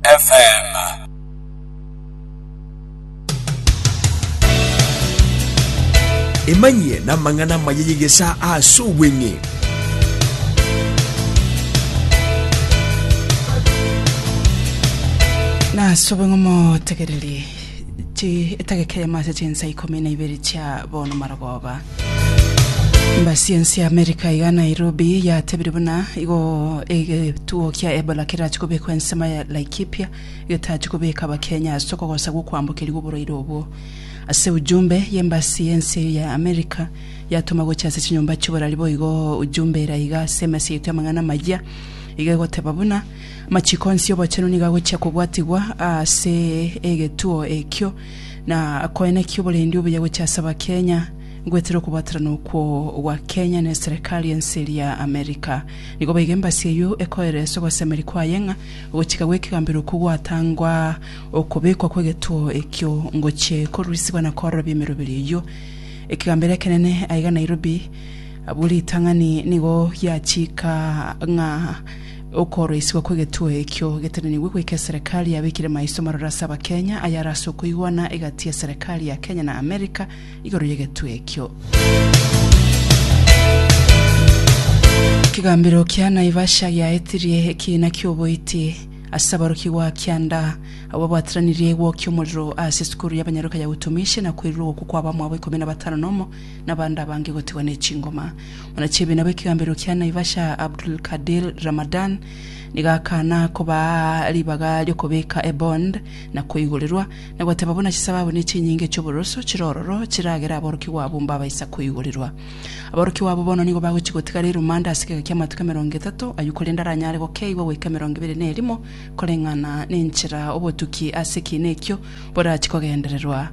FM. Emanyie namang'ana amaya y'egesaa ase obweng'e. Nase obong'omo tegererie Etageka eyemo ase chinsa ikomi na ibere chia bono marogoba. Embasi ense ya Amerika iga Nairobi yatebire buna igo egetuo kia Ebola kerachi kobekwa ensemo ya Laikipia getachi kobeka abakenya ase okogosa gwokwambokeria gwoborwaire obwo. Ase ujumbe y'embasi y'ense eyo ya Amerika yatoma gochia ase chinyomba chi'oborari boigo ujumbe ere iga ase emesa yaito y'amang'ana amayia iga egoteba buna Amachiko onsi 'obochenu nigo agochia kobwatigwa ase egetuo ekio, na koenekia oborendi obuya gochia ase Abakenya, gweterwe okobwaterana okwo gwa Kenya ne Serikali ense eria ya America. Nigo boigo embassy eyio ekoereresa ogosemeri kwaye ng'a ogochika gw'ekegambero okwo gwatangwa okobekwa kw'egetuo ekio ngochie korusigwa na koororobia emeroberi eyio. Ekegambero ekenene aiga Nairobi abwo ritang'ani nigo giachika ng'a Okooroisigwa kw'egetuo ekio getenenigwe goika eserekari yabekire maiso marore ase Abakenya ayare ase okoigwana egati y'eserekari ya Kenya na Amerika igoro y'egetuo ekio. Ekegambero kia Naivasha giaetirie ekiina ki'oboiti ase aborokigwa a kianda abwo babwateranirie gwokia omorero ase esukuru y'abanyaroka ya Utumishi na koirwa ogokwa kwa abamwabo ikomi na batano nomo nabande abange gotigwa ne chingoma. Buna chi'ebiina bw'ekegambero kia Naivasha Abdulkadir Ramadan nigo akana kobaa ribaga ri'okobeka ebond na koigorerwa, na goteba buna chisababu ne chinyinge chi'oboroso chire ororo chiragere aborokigwa abwo mbabaisa koigorerwa. Aborokigwa abwo bono nigo bagochia gotigara erumande ase egeka ki'amatuko emerongo etato ayio korende aranyare gokeigwa goika emerongo ebere ne erimo koreng'ana nenchera obotuki ase ekiina ekio borachie kogendererwa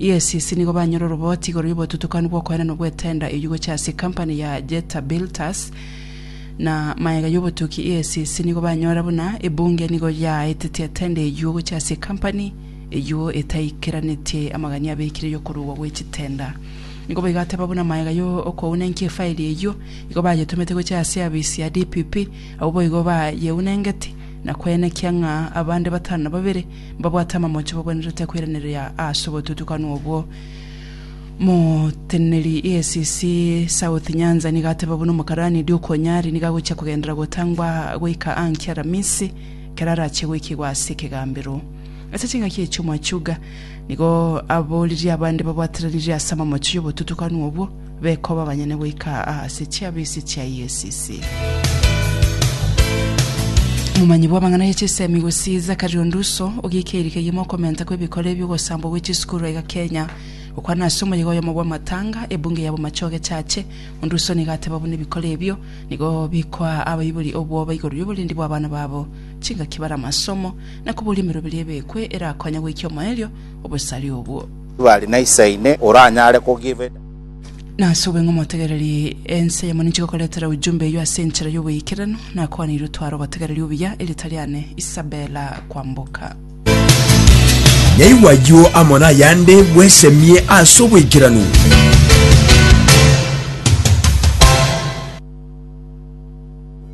EACC nigo banyora oroboti igoro y'obotutukanu bw'okoenana bw'etender eyio gochia ase ecompany ya Jetta Builters na mayega y'obotuki EACC nigo banyora buna ebunge nigo yaaetetie etender eyio gochia ase ecompany eyio etaikeranetie amagania abekire y'okorugwa gwe chitender nigo baigateba buna mayega yo okounenkia efaili eyio igo bayetumete gochia ase eabisi ya DPP abwo boigo bayeunengeti na kwenekia ng'a abande batano na babere mbabwate amamocho babwenerete koiraneria ase obotutukanu obwo. Moteneneri EACC South Nyanza nigo ateba buna omokarani Duke Onyari nigo agochia kogendera gotangwa goika ankia Aramisi ekero arachie goikigwa ase ekegambero. Ase chingaki echio Mwachuga nigo aboririe abande babwateranirie ase amamocho y'obotutukanu obwo, Bekoba abanyene goika aa ase chiabisi chia EACC. Omomanyi bw'amang'ana ye chisemi gusii Zachary Onduso ogiika erika ye mokomenta kw'ebikora ebio gosambwa gwe chisukuru aiga Kenya. Gokwana ase omoyega oyomo bw'amatanga ebunge ya Bomachoge Church, Onduso nigo ateba buna ebikora ebio nigo bikoa abaibori obwoba igoro y'oborindi bw'abana babo, chingaki bare amasomo, na koboria emeroberi ebekwe erakonya goikia omoerio obosare obwo. Bari na Isaine oranyare kogiveta. Nase obong'aini omotegereri ense yamo ninche gokoretera ujumbe eyio ase enchera y'oboikeranu, nakwanire otware obotegereri obuya, erita riane Isabella Kwamboka. Yaigwa ayio amo nayande, bwesemie ase oboikeranu.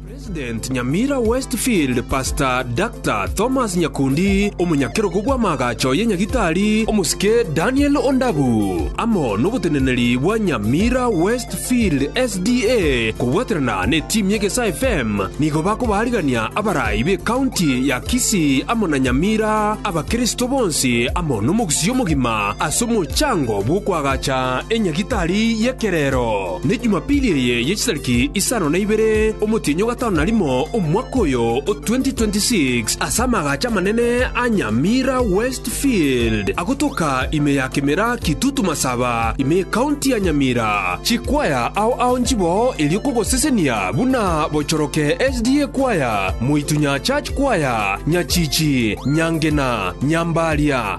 President Nyamira Westfield Pastor Doctor Thomas Nyakundi, omonyakerogo bw'amaagacho ye Nyagitari omosike Daniel Ondabu, amo noboteneneri bwa Nyamira Westfield SDA kobwaterana ne team ye Gesa FM nigo bakobaarigania abarai be county ya Kisii amo na Nyamira abakristo bonsi amo nomogusii omogima ase omochango bw'okoagacha enyagitari y'ekerero. Ne Jumapili eye ye chitariki isano na ibere omotienyi o gatano na rimo omwaka oyo o 2026, ase amagacho amanene a Nyamira West Field, agotoka ime ya Kimera Kitutu Masaba, ime y'Ekaunti ya Nyamira. Chikwaya ao ao nchiboo erio kogosesenia buna Bochoroke SDA Kwaya, Moitunyaa Church Kwaya, Nyachichi, Nyangena, Nyambaria,